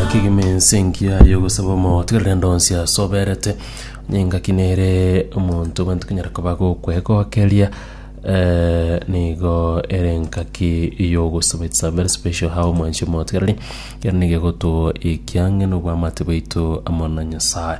Kegima ense engiya y'ogosaba omotigarire ande onsi asoberete, onye engaki nere omonto abanto konyara koba gokwegokeria eh, nigo ere engaki y'ogosaba its a very special how omwanchi omotigareri kero nigo egotoa ekiang'eno obwamate bwaito amo na Nyasaye.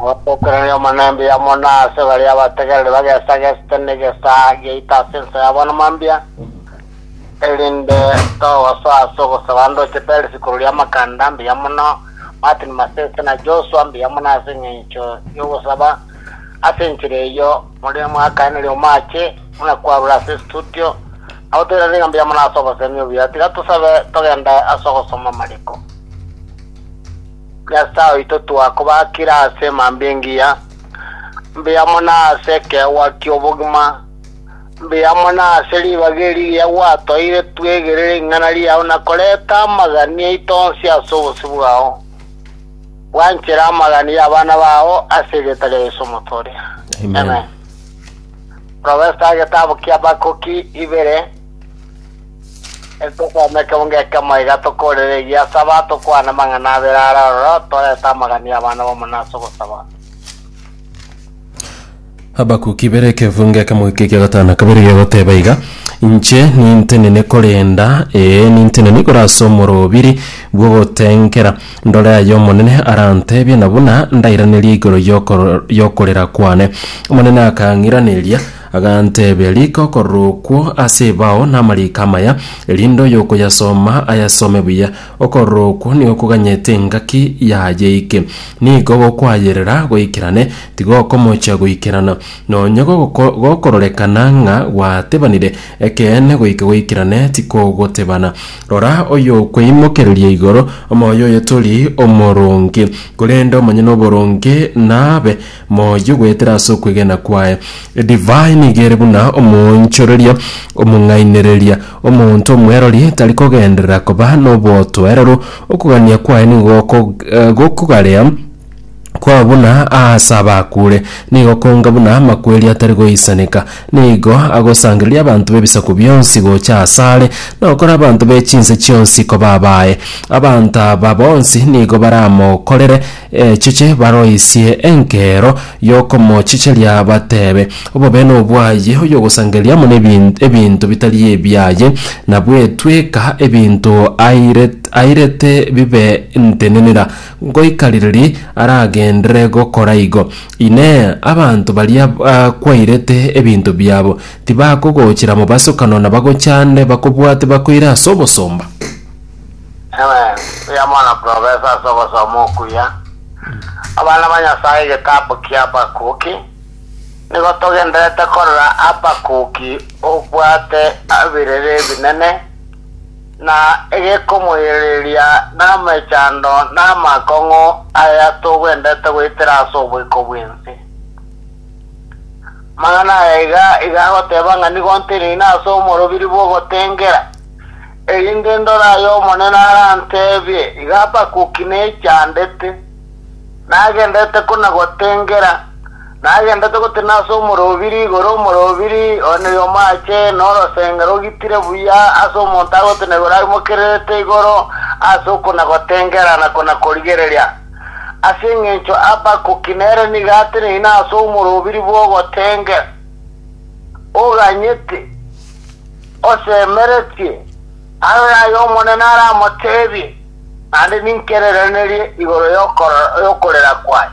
Motokeranie omonembia amo na ase baria abategereri bagesagesete negesaa giaito ase ensa yabo namambia, erinde togosoa ase ogosaba ndoche Peris korwa riamakanda mbuya mono, Martin Masese na Joshua mbuya mono ase engencho yogosaba ase enchera eyio mori mwakaeneri omaache buna kwarure ase estudio, nabo toiranerie ng'a mbuya mono ase obosemi obuya. Tiga tosabe togende ase ogosoma amariko. Nyasae oito twakobakire ase mambia engiya, mbuya mono ase ekeegwa ki'obogima, mbuya mono ase ribaga eri riria gwatoeire twegerere ring'ana riao na korenta amagani aito onsi ase obosio bwao. Bwanchere amagani y'abana bao ase erieta ria Yeso omotooria. Amen. Profesa, Egetabu kia Habakuki ibere. Etosome ekemo ng'ekemo iga tokoorere egiasaba, tokwane amang'ana abere are aroro, torete amagani y'abana b'omonene ase ogosaba. Habakuki ibere ekefu ng'ekemo eke ekia gatano na kabere gegoteeba iga, Inche nintenene korenda, ee, nintenene igoro ase omorobiri bw'ogotengera, ndore aya Omonene aranteebie, na buna ndairaneria igoro y'okor- y'okorera kwane. Omonene akang'iraneria, Aganteebia, Rika okororo okwo ase ebao namariiko amaya, erinde oyokoyasoma ayasome buya. Okororo okwo nigo koganyete engaki yaye ike. Nigo gokwayerera goikerane, tigokomochia goikerana. Nonya gogoko- gokororekana ng'a gwatebanire ekeene goika goikerane, tikogotebana. Rora, oyokweimokereria igoro, omoyo oye tori omoronge, korende omonyene oboronge naabe Moyo goetera ase okwegena kwaye. Edivai nigo ere buna omoonchoreria omong'ainereria. Omonto omwerori tari kogenderera koba nobotoereru, okogania kwaye nigo goko- gokogarea kwao buna aase abakuure. Nigo konga buna amakweri atari goisaneka. Nigo agosangereria abanto b'ebisaku bionsi gocha asare, na okora abanto be chinse chionsi koba abaye. Abanto aba bonsi nigo baramokorere, Echiche baroisie enkero y'okomochicheria bateebe, Obobe nobwaye oyogosangereria mono ebinto bitari ebiaye, na bwetweka ebinto airete bibe ntenenera, ngoika riiri aragenderere gokora igo? Inee! Abanto baria kwairete ebinto biabo tibakogochera mobasokano na bagochande bakobwate bakoire ase obosomba? Amen. Buya mono professor ase ogosoma okuya. Abana ba Nyasaye egetabu kia Habakuki nigo togenderete korora Habakuki obwate ebirere ebinene na egekomoirereria namechando na amakong'u aya togwenderete goitera ase oboiko bwensi. Mang'ana aya iga iga agoteba ng'a nigo ntenine ase omorobiri bw'ogotengera Erinde ndore aya Omonene aranteebie, igo Habakuki nechandete, nagendererete kona-gotengera, nagendererete gotenena ase omorobiri igoro omorobiri, one oyomoache, na orosenge rogitire buya ase omonto agotenena igoro aimokererete igoro ase okona-gotengera na kona-korigereria. Ase engencho Habakuki nere nigo ateneine ase omorobiri bw'ogotengera, oganyete. Osemeretie arore ay'Omonene aramoteebie, naende ninkererenerie igoro y'okorera kwaye.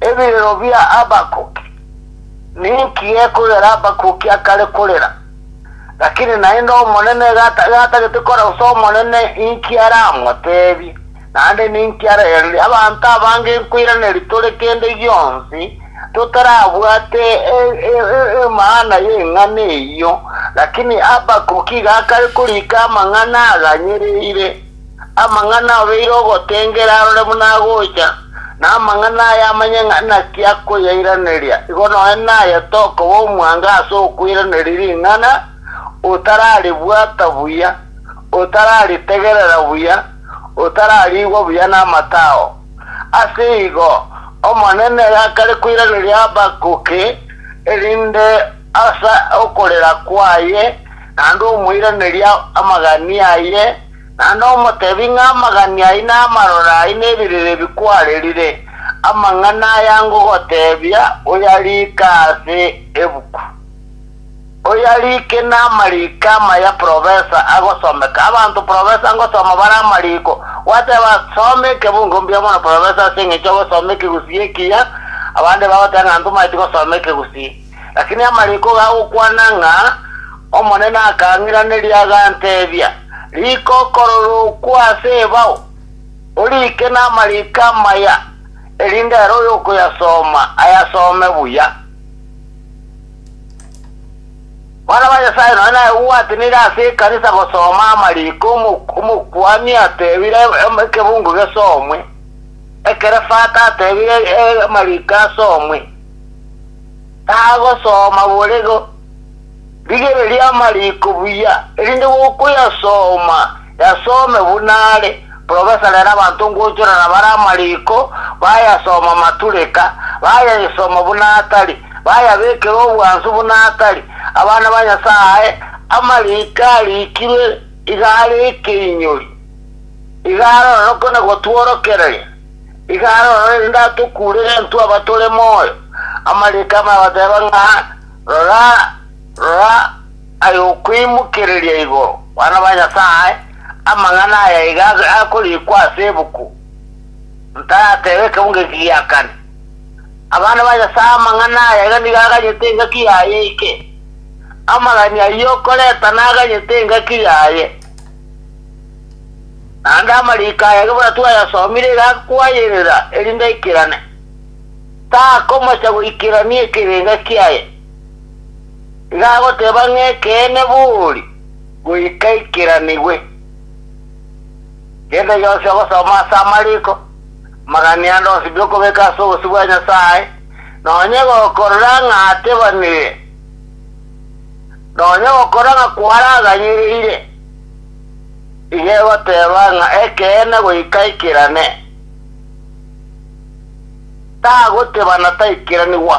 Ebirero bia Habakuki. Ninki gekogera Habakuki akare korera? Lakini naende Omonene iga atagete korora, gose Omonene inki aramoteebie? Naende ninki arerire abanto abange nkoiraneria tore kende gionsi, totarabwate emaana y'eng'ana eyio? Lakini Habakuki iga akare korika amang'ana aganyereire, amang'ana obeire ogotengera arore buna agocha, na amang'ana aya amanye ng'a naki akoyairaneria, igo nonya naye tokoba omwango ase okoiraneria ring'ana, otararibwata buya, otararitegerera buya. otarariigwa buya namatao. Ase igo Omonene gakare koiraneria Habakuki, erinde ase okorera kwaye, naende omoiranerie amagani aye, naende omoteebie ng'a amagani ayio namarore ayio nebirere ebi kwarerire, amang'ana aya ngogoteebia oyariike ase ebuku. Oyarike namariko amaya profesa agosomeka, abanto profesa ngosoma bare amariko, gwateba soma ekebungo mbuya mono profesa ase engencho ogosoma ekegusii ekiya, abande bagoteba ng'a ntomaeti gosoma ekegusii. Lakini amariko gagokwana ng'a Omonene akang'iraneria agantebia, Rika okorora okwo ase ebao, orike namariko amaya, erinde ere oyokoyasoma ayasome buya. Abana ba Nyasae nonya naye gwatenire ase ekanisa gosoma amariko omok- omokuani atebire em- ekebungo gesomwe, ekere fata atebire e- amariko asomwe. Tagosoma borego, rigereria amariko buya, erinde gokoyasoma Yasome buna are. Profesa rero abanto ngochorera bare amariko bayasoma matureka, bayayesoma buna atari, bayabekera obwansu buna atari. Abana ba Nyasaye, amariko arikirwe iga are ekeinyori, iga arorokwe na gotworokereria, iga arorore erinde atokurere intwe abatore moyo. Amariko amaya bateba ng'a, Rora, rora, Aye okoimokereria igoro, bana ba Nyasae, amang'ana aya iga akorikwa ase ebuku, Ntarateba ekemo ng'eki giakane. Abana ba Nyasae, amang'ana aya iga nigo aganyete engaki yaye eke. Amagani ayio okoreta naganyete engaki yaye. Naende amariko aya ekebuna twayasomire iga akoayerera erinde aikerane. Takomocha goikerania ekerenga kiaye. Iga agoteba ng'a ekeene bori, goika eikeranigwe. Genda iga ose ogosoma ase amariko, amagani ande onsibie okobeka ase obosio bwa Nyasae, nonya gokorora ng'a atebanire, nonya gokorora ng'a kwaraganyereire. Iga egoteba ng'a ekeene goika eikerane. Tagoteba na taikeranigwa.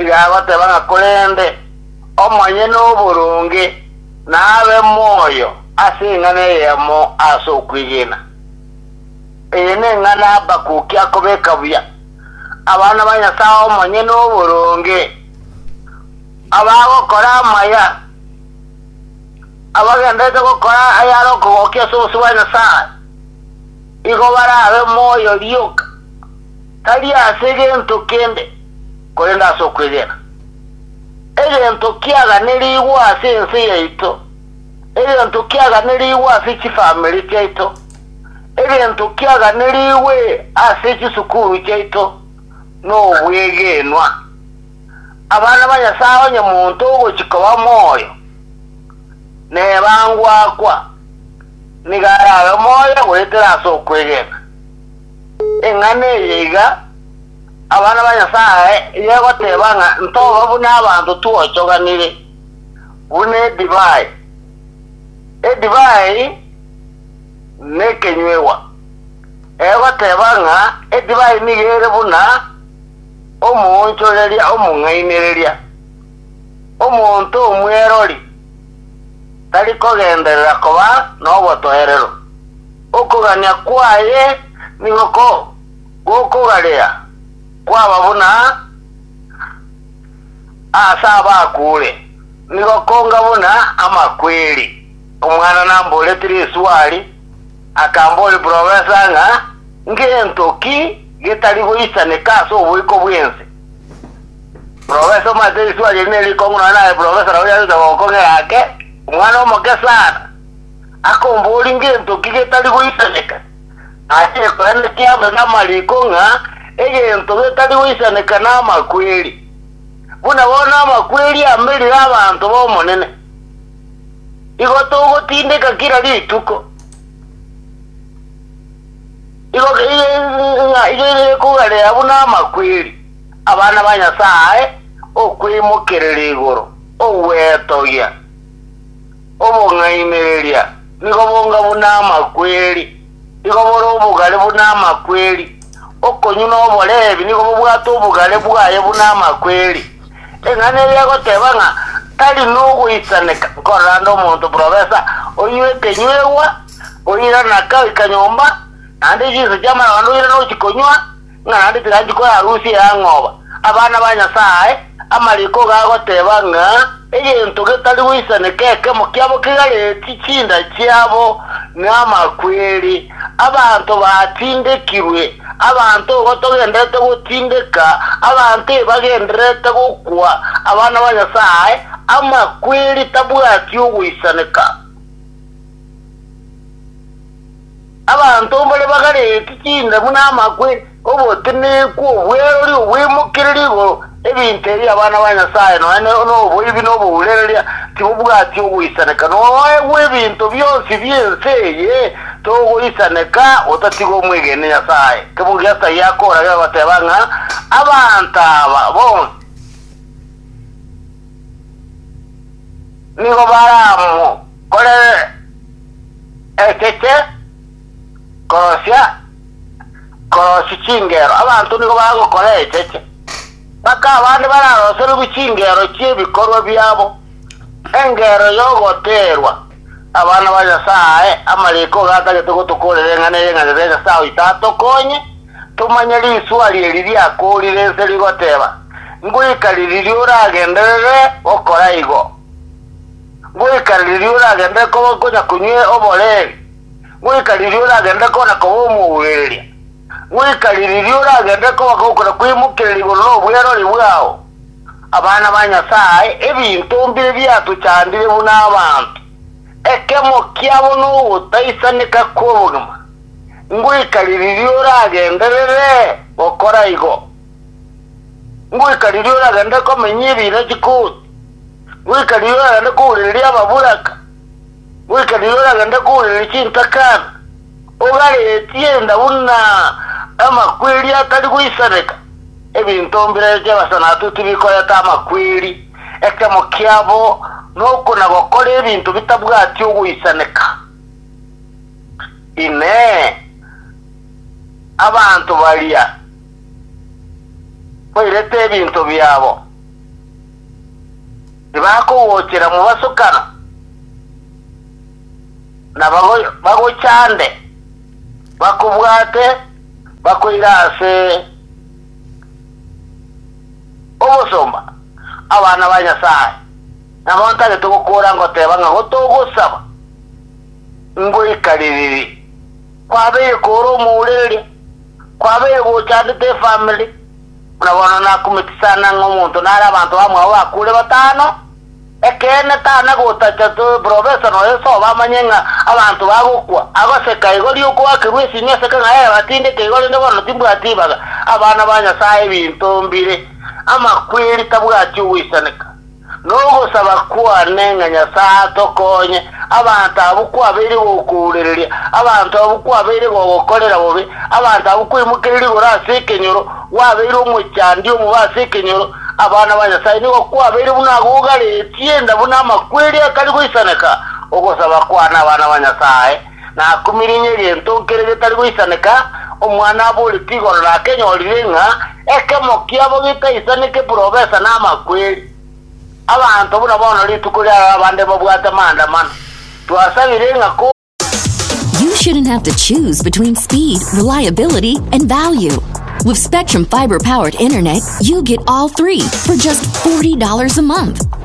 Iga agoteba ng'a korende Omonyene oboronge nabe moyo ase eng'ana eyemo ase okwegena. Eye neng'ana Habakuki akobeka buya, Abana ba Nyasae Omonyene oboronge, abagokora amaya, abagendererete gokora ayare okogokia ase obosio bwa Nyasae, igo barabe moyo rioka. Tari ase gento kende, korende ase okwegena. Egento kiaganerigwe ase ense yaito, egento kiaganerigwe ase chifamiri chiaito, egento kiaganerigwe ase chisukuru chiaito nobwegenwa. Abana ba Nyasae onye monto ogochia koba moyo nebangwakwa, nigo arabe moyo goetera ase okwegena. Eng'ana eye iga abana ba Nyasae yegoteba ng'a ntoba buna abanto twochoganire, buna edivai. Edivai nekenywegwa, egoteba ng'a edivai nigo ere buna omoonchoreria omong'ainereria. Omonto omwerori tari kogenderera koba nobotoerero. Okogania kwaye nigo gokogarea kwaba buna aase abakuure, nigo konga buna amakweri. Omwana namboretire eswali, akambori professor ng'a ngento ki getari goisaneka ase oboiko bwense? Professor omanyete riswali eri nerikong'u nonya naye professor nabo yare gocha gokong'era ake omwana omoke sana. Akombori ngento ki getari goisaneka? Aye ekweneti amo namariko ng'a egento getari goisaneka namakweri, buna bono amakweri amerire abanto b'Omonene. Igo togotindeka kera rituko, igo ng'a gekogarea buna amakweri, abana ba Nyasae, okweimokerera igoro, ogwetogia, Obong'ainereria nigo bonga buna amakweri, nigo bore obogare buna amakweri. Okonywa noboreebi nigo bobwate obogare bwaye buna amakweri. Eng'ana eye egoteba ng'a tari nogoisaneka nkorande omonto profesa onywe ekenywegwa, oirana kagoika nyomba, naende chinsa chi'amarondo oirana ochi konywa, ng'a naende tiranchi koyarusia eyang'oba abana ba Nyasae, amariko iga agoteba ng'a egento getari goisaneka ekemo kiabo kigaretie chinda chiabo namakweri. Abanto batindekirwe, abanto igo togenderete gotindeka, abanto ebagendererete gokwa abana ba Nyasae, amakweri tabwati ogoisaneka. Abanto mbare bagareti chindamu na amakwe, obotenenku, obwerori, obwemokereria igoro, ebinto ebi abana ba Nyasae nonya noboibi na obourereria tibobwati ogoisaneka. Noegwe ebinto bionsi bi'ense eye togoisaneka otatiga omwegene Nyasae. Kemogia Asaya akoragera goteba ng'a abanto aba bonsi nigo baramo. Korere ekeche korosia korosia chingero, abanto nigo bagokora echeche, mpaka abande bararoserigwe chingero chi'ebikorwa biabo, engero y'ogoteerwa abana ba Nyasae. Amariiko iga atagete gotokoorera eng'ana eye ng'a Nyasae Nyasae oito atokonye tomanye risuari eri riakoorire ense rigoteeba, Ngoika riririo oragenderere gokora igo? Goika riria oragenderere koba konya konywa oboreeri, goika riria oragenderere kona koba omourereria, goika riria oragenderere koba gokora kweimokereria igoro nobwerori bwao, abana ba Nyasae, ebinto mbire biatochandire buna abanto, ekemo kiabo nogotaisaneka kw'obogima, ngoika riria oragenderere gokora igo? Ngoika riria oragenderere komenya ebiina chikoti? goika rirorio oragende kourereria ababuraka, goika rirorio oragende kourereria chintakana, ogaretie enda buna amakweri atari goisaneka, ebinto mbirebe bi'abasanatu tibikoreta amakweri, echamo kiabo nokonagokora ebinto bitabwati ogoisaneka. Inee! Abanto baria bairete ebinto biabo? tibakogochera mobasokano, na bagochande, bakobwate, bakoire ase obosomba abana ba Nyasae, nabo ntagete gokoora ngoteba ng'a gotogosaba ngoikarereri. Kwabeire koora omourereria, kwabeire gochandete efamiri. Buna bono nakumeti sana ng'a omonto nare abanto bamwabo bakure batano, ekeene tana gotacha profesa noyo sobo amanye ng'a abanto bagokwa, agoseka igori okoakerwa esinyo ase kang'ai aye batindeke igo rende bono timbwati ibaga, abana ba Nyasaye ebinto mbire, amakweri tabwati ogoisaneka. Nogosaba kwane ng'a Nyasae atokonye, abanto abwo kwabeire gokourereria, abanto abwo kwabeire gogokorera bobe, abanto abwo kwaimokereire igoro ase ekenyoro, gwabeire omochandi omobe ase ekenyoro, abana ba Nyasae nigo kwabeire buna agogaretie enda buna amakweri atari goisaneka, ogosaba kwane abana ba Nyasae, Nakumirinia egento nkere getari goisaneka, omwana aboreti igoro nakenyorire ng'a ekemo kiabo getaisaneke purobesa namakweri. Abanto buna bono rituko riaroro abande babwate amaandamano. Twasabire ng'a ko. You shouldn't have to choose between speed, reliability, and value. With Spectrum Fiber powered internet, you get all three for just $40 a month.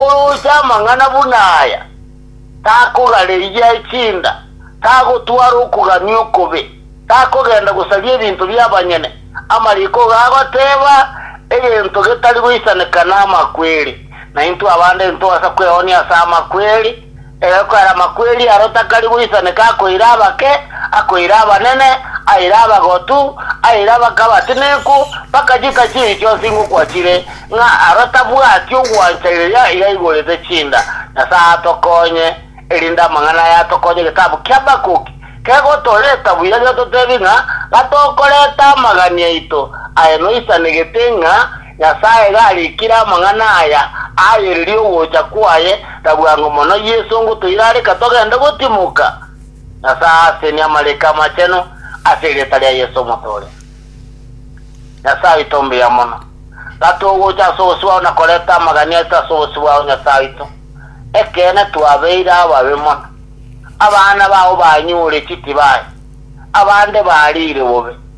Oroche amang'ana buna aya, takogareyia echinda, tagotwara okogania okobe, takogenda gosaria ebinto bi'abanyene, amariko igo agoteba, egento getari goisaneka namakweri, na intwe abande intogasa kweoonia ase amakweri. Egokarama kw'eria aro takari goisaneka akoira abake, akoira abanene, aira abagotu, aira abake abatenenku, bakachita chibi chionsi ingokwachire, ng'a aro tabwati ogwancha riria yaigorete chinda. Nyasae atokonye, erinde amang'ana aya atokonye egetabu kia Habakuki kegotoreta buya getotebi ng'a gatokoreta amagani aito aye noisanegete ng'a Nyasae garikire amang'ana aya, Ayereria ogocha kwaye, na bwango mono Yeso ngotoira reka togende gotimoka. Nyasae aasenie amariko amachenu ase erieta ria Yeso omotooria. Nyasae oito mbuya mono, gatogocha ase obosio bwao na koreta amagania aito ase obosio bwao Nyasae oito. Ekeene twabeire ababe mono. Abana bao banyuure chitibaye, abande bariire bobe.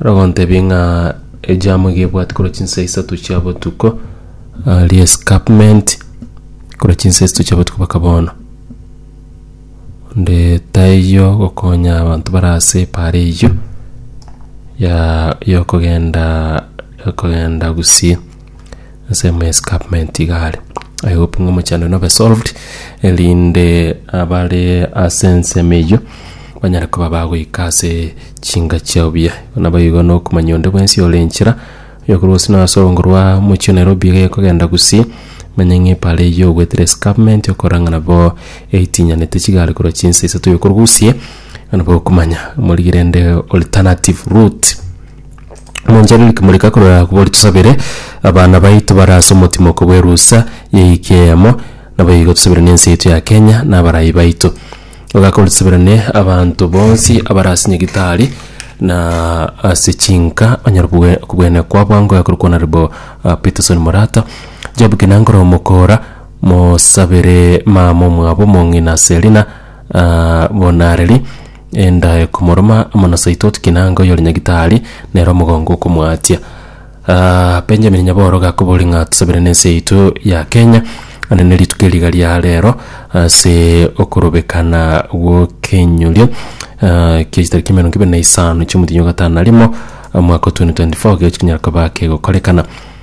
Nagontebie ng'a ejamu iga ebwate korwa chinsa isato chia botuko ah, re-escarpment korwa chinsa isato chia botuko mpaka bono. Onde taiyo gokonya abanto bare ase epaara eyio ya yokogenda yokogenda gusii. ensemo ya escarpment iga are I hope ng'a omochando nobe solved erinde abare ase ensemo eyio banyare koba bagoika ase chinga chiao buya igo nabo igo na okomanya onde bwensi ore enchera oyokorwa gose na ase orwongo rwa omochie o Nairobi iga ekogenda Gusii manya ng'a epaara eyio ogoetera escarpment okorora ng'a nabo eitinyanete chigari korwa chinsa isato oyokorwa Gusii igo nabo okomanya omorigire ende alternative route. Monchero rikomoreka korwa agwo bori tosabere abana baito bare ase omotimoko bw'erusa y'ehika eyemo, naboigo tosabere nense yaito ya Kenya na abarai baito. Ogaka ore tosabirane abanto bonsi abare ase nyagitari na ase chinka banyare kobwe kobwenekwa bwango iga korokwa naribo Peterson Morata. Job Kinangora omokora mosabere mama omwabo omong'ina Selina Bonareri. Enda ekomoroma amo na Saitoti Kinanga oyore nyagitari, nere omogongo okomoatia. Ah, Benjamin Nyaboro gakobori ng'a tosabere nense yaito ya Kenya ande ne rituko eri iga ria rero ase okorobekana gw'okenyorio ah, kia chitariki emerongo ebere na isano chi'omotienyi o gatano na rimo omwaka o 2024 gekero chinyara koba kegokorekana.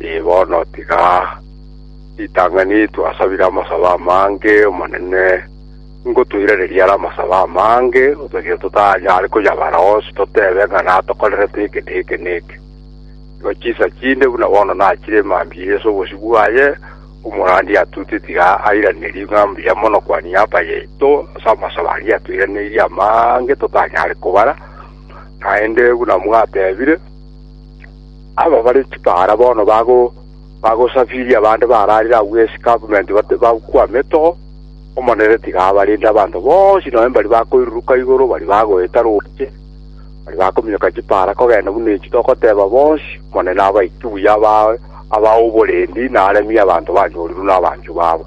Ee, bono tiga ritang'ani twasabire amasabo amange, Omonene, ngotoiranerie are amasabo amange, otagire totanyare koyabara onsi totebe ng'a natokorerete eke na eke na eke. Igo chinsa chinde buna bono nachire emambia ase obosio bwaye, omorandia atute tiga airanerio ng'a mbuya mono Kwaniapa yaito ase amasabo aria atoiraneirie amange totanyare kobara, naende buna mwatebire, Aba bare chipaara bono bagosafiria abande bararire agwo ase gavumenti bakwame to. Omonene tiga abarinde abanto bonsi nonya mbari bakoiruruka igoro, mbari bagoeta roche, mbari bakominyoka chipaara kogenda buna echi togoteba bonsi. Omonene abaike buya abae abae oborendi na aremie abanto banyorirwe nabanchwa babo.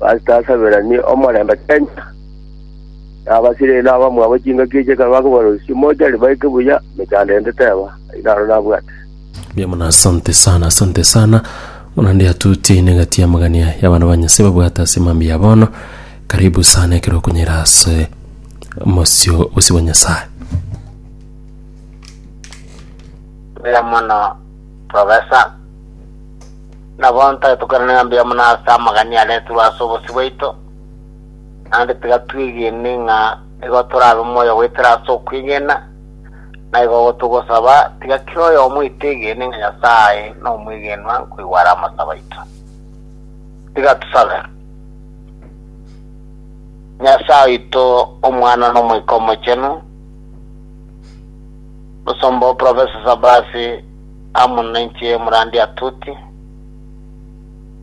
Basasaberanie omorembe Kenya, na abasire na abamwabo chingaki echi ekero bakobaroisia, mochari baike buya emechando ende teba, ai naro nabwate. Mbuya mono asante sana asante sana buna nde atuti negati amagania y'abana ba nyasaye babwate ase mambia ya bono karibu sana ekero okunyera ase mosio obosi bwa nyasaye Mbuya mono professor. Nabo ntagetokerane ng'a mbuya mono ase amagania areterwe ase obosio bwaito, naende tiga twegene ng'a nigo torabe moyo goetera ase okwegena. Naigo gotogosaba, tiga kera oyomo oito egene ng'a Nyasae nomwegenwa nkoigwa are amasabo aito. Tiga tosabe. Nyasae oito, Omwana, na Omoika Omochenu, Mosomba o Profesa Sabasi, amo nainche omorandi Atuti,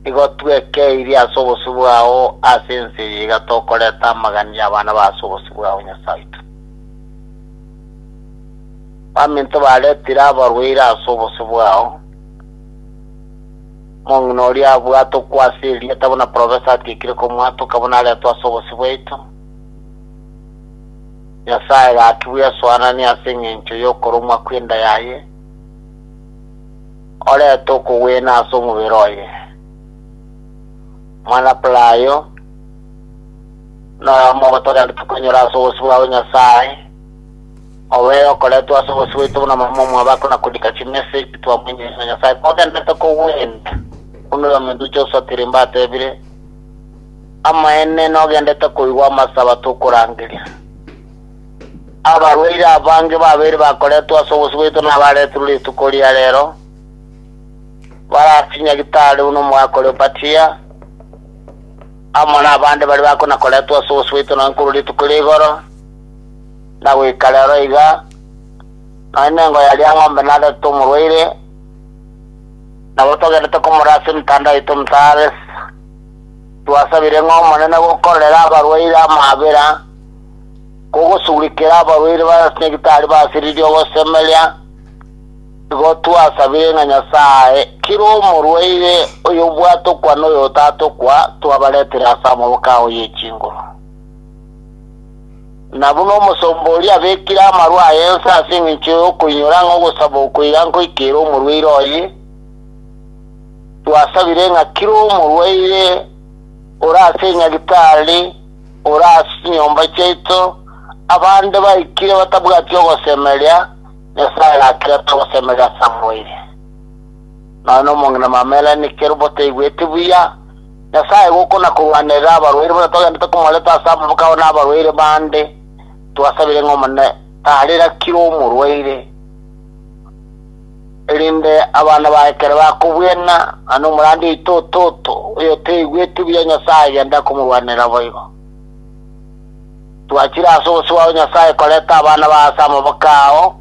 nigo twekeirie ase obosio bwao ase ense eye iga tokoreta amagani y'abana ba ase obosio bwao, Nyasae oito. Baminto baretire abarwaire ase obosio bwao, omong'ina oria abwatokwa ase erieta buna profesa atiekire komwatoka buna aretwe ase obosio bwaito. Nyasae gaki bw'esoanani ase engencho y'okoromwa kw'enda yaye, orete okogwena ase omobere oye. Omwana-palayo noyomo ogotogambete kwanyora ase obosio bwa Nyasae, obo ere okoretwe ase obosio bwaito buna mama omwabako na kodika chimesa echi twamoinyeire na Nyasae kogenderete kogwena, buna oyominto Josua Tirimba atebire, Amaene nogendete koigwa amasabato okorangeria. Abarwaire abange babere bakoretwe ase obosio bwaito nabaretirwe rituko ria reero, bare ase Nyagitari buna omogaka oria Opatia, amo nabande baria bakonakoretwe ase obosio bwaito nonye korwa rituko ria igoro na goika reero iga, nonye nengo ya riang'ombe naretete omorwaire, nabo togendete komorora ase emetanda yaito omotaare. Twasabire ng'a Omonene gokorere abarwaire amaabera, kogosugurikera abarwaire ba Nyagitari basiririe ogosemeria, igo twasabire ng'a Nyasae kera omorwaire oyobwatokwa na oyotatokwa twabaretire ase amaboko ao ye chinguru. Na buna omosomba oria abekire amaru aye inse ase engencho y'okoinyora ng'a ogosaba okoira nkoikere omorwaire oye, Twasabire ng'a kera omorwaire ore ase enyagitari ore ase chinyomba chiaito, abande baikire batabwati ogosemeria, Nyasae nakerete ogosemeria ase amoerio. Nonya nomong'ina mamerani kera obotaigweti buya, Nyasae igo okona-korwanerera abarwaire buna twagendete komoreta ase amaboko abo na abarwaire bande. Twasabire ng'a Omonene tarera kera omorwaire. Erinde abana baye ekero bakobwena ng'a nomorandi oito o toto, oyoteigweti buya Nyasae agende akomorwanera boigo. Twachire ase obosio bwao Nyasae koreta abana bao ase amaboko ao,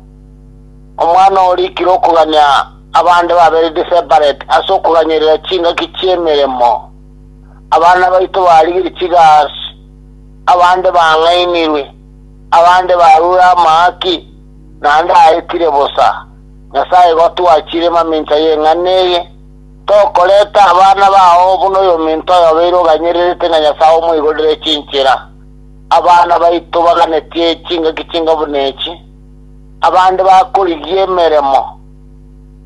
omwana oo orikire okogania abande babereti separate ase okoganyeria chingaki chi'emeremo, abana baito barigirie chigasi, abande bang'ainirwe, abande barure amaaki, naende aetire bosa, Nyasae gotwachire mamincha y'eng'ana eye, tokoreta abana bao buna oyominto oyobeire oganyererete na Nyasae omoigorere chinchera. Abana baito baganetie chingaki chinga buna echi, abande bakorigia emeremo,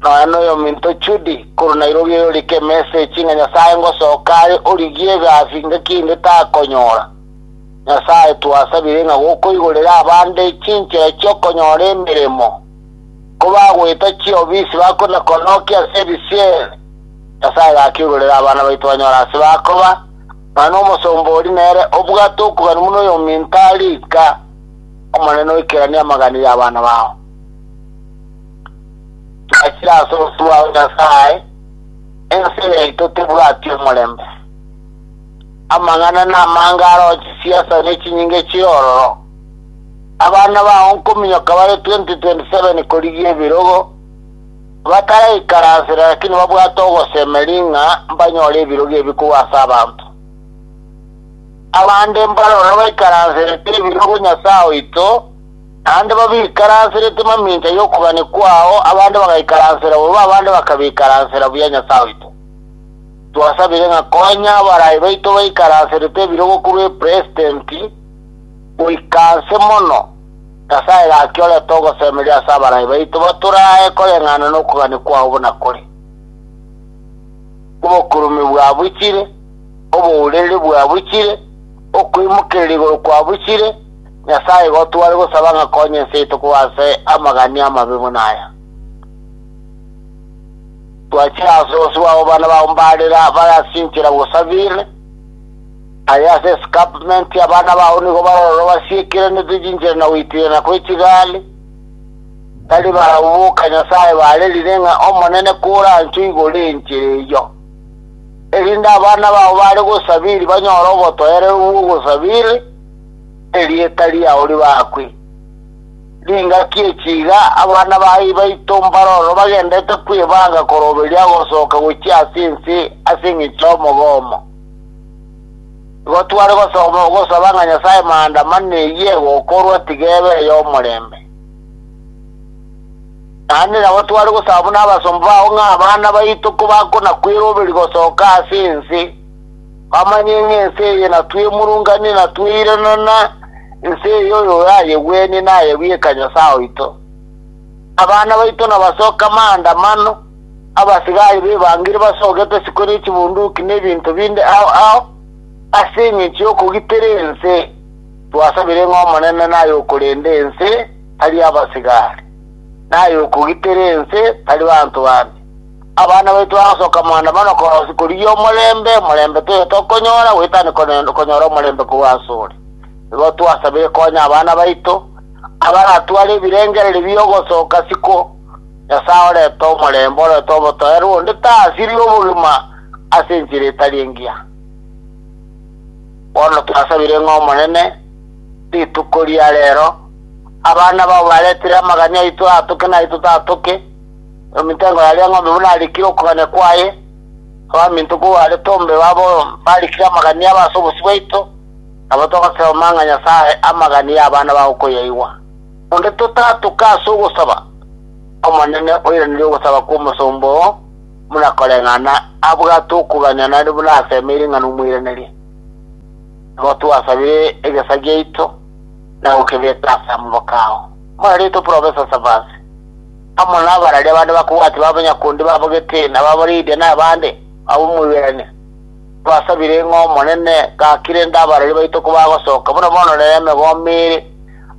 nonya noyominto Judy korwa Nairobi oyorika emesechi ng'a Nyasae ngosoka are origie egasi ngaki inde takonyora. Nyasae, twasabire ng'a gokoigorere abande chinchera chi'okonyora emeremo, kobagoeta chiofisi bakore kona oke ase ebisieri. Nyasae gaki oigorere abana baito banyore ase bakoba, ng'a nomosomba oria nere obwate okogania buna oyominto are ika. Omonene oikeranie amagani y'abana bao. Twachire ase obosio bwao Nyasae, ense yaito tebwati omorembe. amang'ana namange aroo chisiasa ne chinyinga chi'ororo. Abana bao nkominyoka bare 2027 korigia ebirogo, bataraikaransera lakini babwate ogosemeria ng'a mbanyore ebirogo ebi korwa ase abanto. Abande mbaroro baikaranserete ebirogo Nyasae oito, naende babikaranserete mamincha y'okobani kwao, abande bagaikaransera bobe, abande bakabikaransera buya Nyasae oito. Twasabire ng'a konya abarai baito baikaranserete ebirogo korwa eperesitenti goika aase mono, Nyasae gaki orete ogosemeria ase abarai baito batoraae koreng'ana nokogania kwao buna kore. Obokurume bwabuchire, obourereria bwabuchire, okoimokereria igoro kwabuchire, Nyasae igo tware gosaba ng'a konya ense yaito koba ase amagania amabe buna aya. Twachire ase onsi bwabo bane baumbarire abare ase enchera gosabire, aye ase escarpment abana bao nigo baroro basiekeranete chinchera na goitirana kwe chigari, tari barabwo boka Nyasae barerire ng'a Omonene koranchwe igoro enchera eyio, erinde abana bao bare gosabiri banyore obotoereru bw'ogosabiri, erieta riao ribakwe. Ningaki echi iga abana ba ibaito mbaroro bagendete kwebanga koroberia ogosoka gochia ase ense ase engecho y'omogomo. Igo tware gosoma gosaba ng'a Nyasae maandamano eyio egokorwa tiga ebe ey'omorembe. Naende nabo tware gosaba buna abasomba bao ng'a abana baito kobakonakweroberia gosoka ase ense, Bamanye ng'a ense eye natwemurunganie na tweirana na ense eye oyoyayegwenie naye bweka Nyasae oito. Abana baito nabasoke amaandamano, abasigari b'ebangiri basogete isiko ne chibunduki na ebinto binde ao ao, ase engencho y'okogitera ense. Twasabire ng'a Omonene naye okorenda ense, tari abasigari, naye okogitera ense, tari banto bande. Abana baito bagasoka maandamano korosia korigia omorembe, omorembe toiyo tokonyora, goetania kone- konyora omorembe korwa asore. Igo twasabire konya abana baito, abaratware ebirengererio bi'ogosoka siko. Nyasae orete omorembe, orete obotoeru, onde tasirie obogima ase enchera etari engiya. Bono twasabire ng'a Omonene, rituko ria rero, abana bao baretire amagani aito atoke naye totoatoke, Ominto engo yaria eng'ombe buna arikire okogania kwaye, abaminto ko are Tombe babo barikire amagania abo ase obosio bwaito, nabo togosoma ng'a Nyasae amagania y'abana baye okoyaigwa. Onde totatuke ase ogosaba, Omonene oiranerie ogosaba kw'omosomba oo buna koreng'ana abwate okogania nare buna asemeire ng'a nomoiraneria. Nabo twasabire egesa giaito na gokebeka ase amaboko ao. Mwarerete Professor Savasi. Amo nabararia abande bakobwati babo nyakundi babo gete na babo Lidia na abande ab'omoiberania, mbasabire ng'a Omonene gaki rende abarari baito kobagosoka, buna bono rero emegombe ere,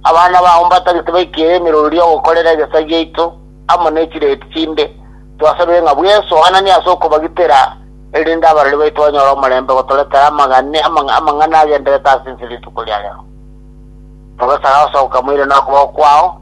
abana babo mbatagete baike ere emerori y'ogokorera egesaku giaito amo ne chireti chinde, twasabire ng'a bw'ensoananie ase okobagitera, erinde abarari baito banyore omorembe gotoretera amagani amang'ana agenderete ase ense rituko ria rero. Mogosaga gosoka moirane okoboko kwao.